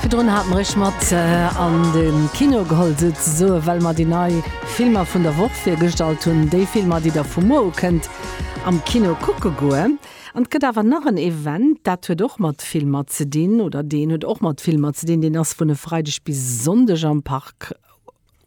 Virdrun hat mer iech mat an de Kino geholl, souzesoen, well mer déi nei Filmer vun der Woch virgestallt hunn, déi Filmer, déi der vu muer u kënnt am Kino kucke goen. An et gëtt awer nach en Event, dat huet och mat Filmer ze dinn, oder deen huet och mat Filmer ze dinn, deen ass vun e Freideg bis e Sonndeg am Park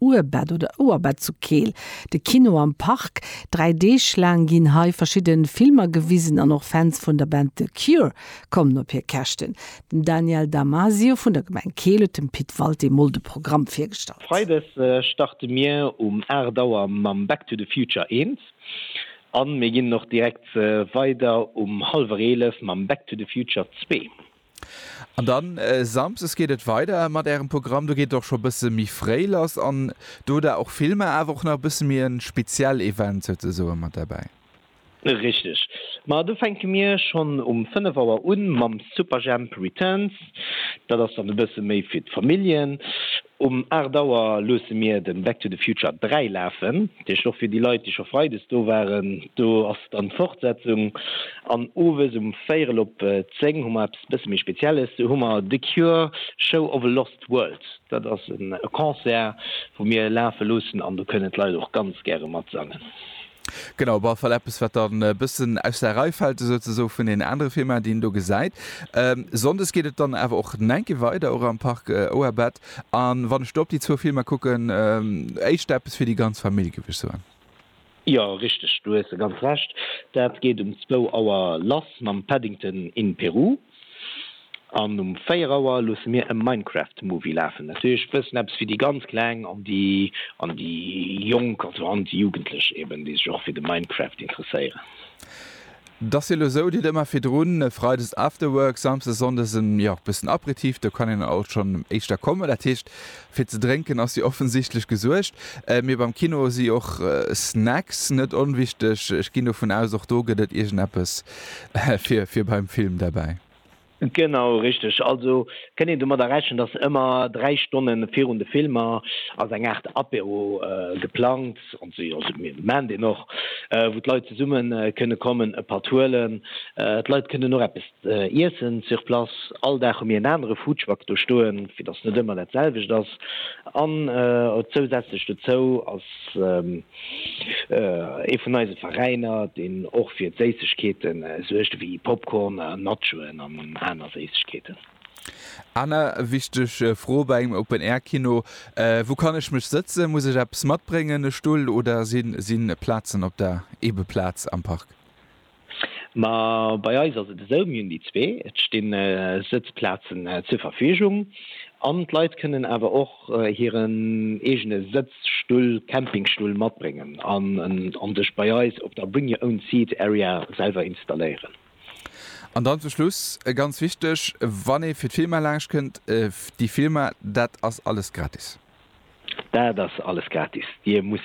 Ouerbett oder Ouerbett zu Keel, de Kino am Park. Dräi Deeg laang ginn hei verschidde Filmer gewisen an och Fans vun der Band The Cure kommen op hir Käschten. Den Daniel Damasio vun der Gemeng Keel huet dem Pit Walté emol de Programm virgestallt. Freides starte mir um 8 Auer mam Back to the Future 1 an mir ginn och direkt weider um hallwer 11 mam Back to the Future 2. An dann Samsdes geet et weider mat ärem Programm. Do geet et och scho bësse méi fréi lass an do hutt der och Filmer, awer och nach e bësse méi e speziell Event souzesoen mat derbäi. Richteg. Ma do fänke mir schonn um 5 Auer un mam Superjhemp Returns. Dat ass dann e bësse méi fir d'Familljen. Um 8 Auer loosse mir de Back to the Future 3 lafen. Deg och fir déi Leit, déi scho Freides do waren. Do ass dann d'Fortsetzung an owes um véierel op zéng hu mer eppes e bësse méi Spezielles. Do hu mer The Cure, Show of a Lost World. Dat ass e Concert, wou mir lafe loossen an do kënnen d'Leit och ganz gäre matsangen. Genau, op alle Fall eppes, wat dann e bëssen aus der Rei fält esou ze soe vun deenen anere Filmer, déi een do gesäit. Sonndes geet et dann awer och nengke weider, och am Parc Ouabat. A wann ech do op déi zwou Filmer kucken, éischter eppes fir déi ganz Famill, géif ech soen. Jo, richteg, do hues de ganz Recht. Dat geet um zwou Auer lass mam Paddington in Peru an um véier Auer loosse mir e Minecraft Movie lafen. Natierlech e bëssen eppes fir déi ganz Kleng an déi an déi Jonk, also an déi Jugendlech eben, déi sech och fir de Minecraft interesséieren. 't ass jo lo sou, Dir hutt ëmmer virdrun e Freides Afterwork, Samsdes, Sonndes e jo bëssen Aperitif, do kann een alt schonn éischter kommen. Dat heescht, fir ze drénken ass jo offensichtlech gesuergt. Mee beim Kino si och Snacks net onwichteg. Ech ginn dovun aus, och do gëtt et iergendeppes fir beim Film derbäi. Genau, richteg. Also kënnt een domadder rechnen, dass ëmmer dräi Stonne virun de Filmer ass eng Aart Apéro geplangt, an déi ment een och, wou d'Leit zesumme kënne kommen, e Patt huelen. D'Leit kënnen och eppes iessen sur place. All Dag hu mir en anere Foodtruck do stoen, fir dass net ëmmer dat selwecht ass. An zousätzlech dozou ass Ee vun eise Veräiner, deen och fir Séissegkeete suergt, ewéi Popcorn, Nachoen an aner Séissegkeeten. Aner wichteg Fro bei engem Open Air Kino, Wou kann ech mech sëtzen? Muss ech eppes matbréngen, e Stull oder sinn Plazen op der Eebeplaz am Park? Ma bei eis ass et esou, mir hunn déi zwee, et stinn Sëtzplazen zur Verfügung an d'Leit kënnen awer och hiren eegene Sëtzstull, Campingstull matbréngen an sech bei eis op der Bring Your Own Seat Area selwer installéieren. An dann zum Schluss ganz wichteg, wann ee fir d'Filmer laanscht kënnt, déi Filmer, dat ass alles gratis? Dat ass alles gratis, Dir musst